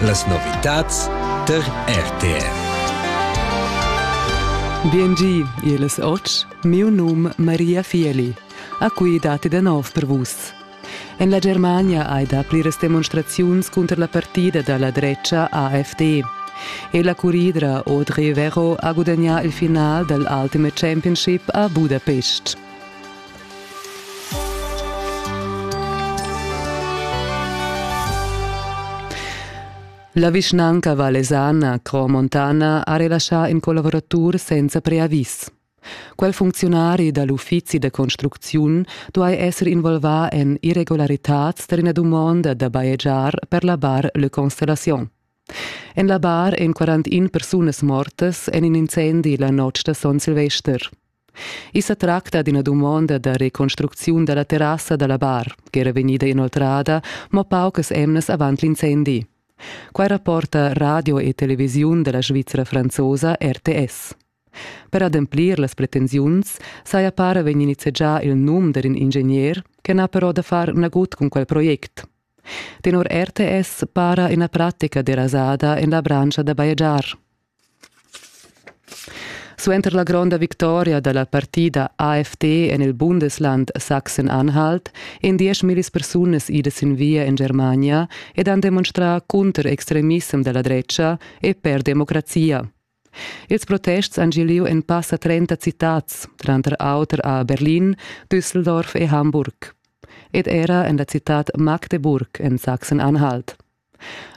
Las novitads tar RTR. Biengi, il soc, miu num Maria Fieli. A cui dati da nov per vus. En la Germania hai dapli demonstraziuns contro la partida dalla drecha AfD. E la curidra Audrey Vero ha gudagnà il final dell'Ultimate Championship a Budapest. La vischnanca valesana Cromontana ha relaschà in collaboratur senza preavis. Quel funcziunari da l'uffizi da construcziun duai esser involvà en irregularitads tar ina dumonda da bajegiar per la bar Le Constellation. En la bar èn 41 persunas mortas en in incendi la notg da Son Silvester. I sa tracta d'ina dumonda da reconstrucziun dalla terrassa dalla bar, ch'era vegnida inoltrada mo paucas emnas avant l'incendi. Quai rapporta radio e televisiun della Svizra franzosa RTS. Per ademplir las pretensiuns saja para vegni nizzegià il num d'un ingegner che n'ha però da far nagut con quel project. Tenor RTS para ina pratica derasada en la branscha da bajegiar. Suenter la gronda victoria dalla partida AfD en il Bundesland Sachsen-Anhalt èn dieschmillis persunas idas sin via en Germania ed han demonstrà cunter extremissem da la dretga e per democrazia. Ils protests han gì lieu en passa 30 citads, tranter auter a Berlin, Düsseldorf e Hamburg, ed era en la citad Magdeburg en Sachsen-Anhalt.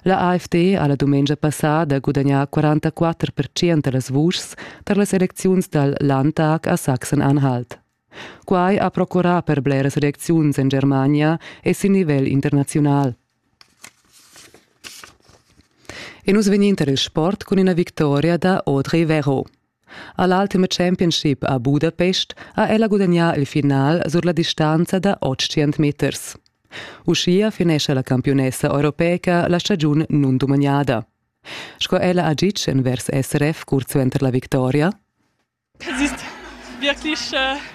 La AFD ha la dumengia passada gudagnà 44 percent da las vuschs tar las elecziuns dal Landtag a Sachsen-Anhalt. Quai ha procurà per bleras elecziuns en Germania e sin nivel internaziunal. E nus vegnin tar il sport cun ina victoria da Audrey Vero. A l'Ultimate Championship a Budapest ha ella gudagnà il final sur la distanza da 800 meters. Uschia finescha la campiunessa europeca la stagiun nundumagnada. Sco ella ha ditg envers SRF curt suenter la victoria. Es ist wirklich äh,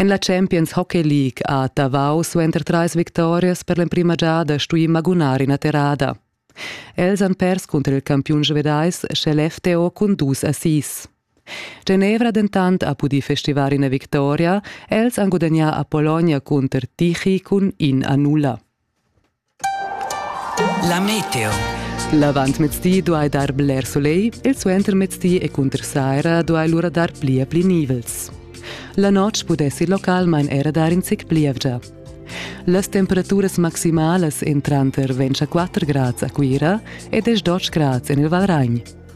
En la Champions Hockey League ha Tavau suenter trais victorias per l'emprima giada stuì magunar ina terrada. Els han pers cunter il campiun svedais sche l'FTO cun dus assis. Genevra dentant ha pudì festivar ina victoria, els han gudagnà a Pologna cunter Tichy cun in a nulla. La meteo. L'avantmezdi duai dar bler solegl, il suentermezdi e cunter saira duai lura dar pli e pli nivels. La notg pudessi localmain era dar in zic plievgia. Las temperaturas maximalas en tranter 24 grads a Cuira ed 12 grads en il Valragn.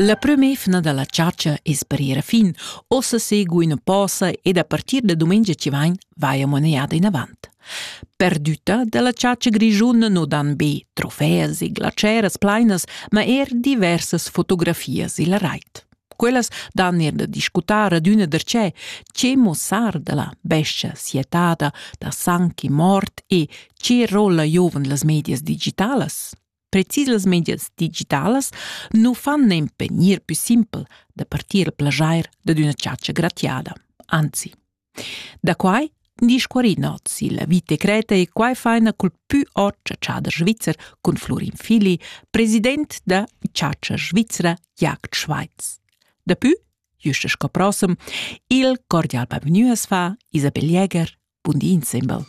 La prem'efna dalla chatscha es per ir a fin. Ossa segu ina posa ed a partir da domenica ci vain vai a moneda inavant. Perdüta dalla chatscha grischuna no dan be trofeas e glaceras plainas, ma er diversas fotografias illa rait. Quellas dan er da discutar adüna darchè che muossar dalla bescha sietada da sang e mort e che rolla giovan las medias digitalas. Precis els medias digitalas nu fan nempe gnir pü simpel da partir il plajair dad üna chatscha gratiada. Anzi. Da quai disch Quarin oz il vite creta e quai faina cul pü ot chatschader svizzer cun Florin Fili, president da Chatscha Svizzera Jagd Schweiz. Dapü, juste sco prossem, il cordial bavgnü as fa Isabel Jäger. Bundi insembel.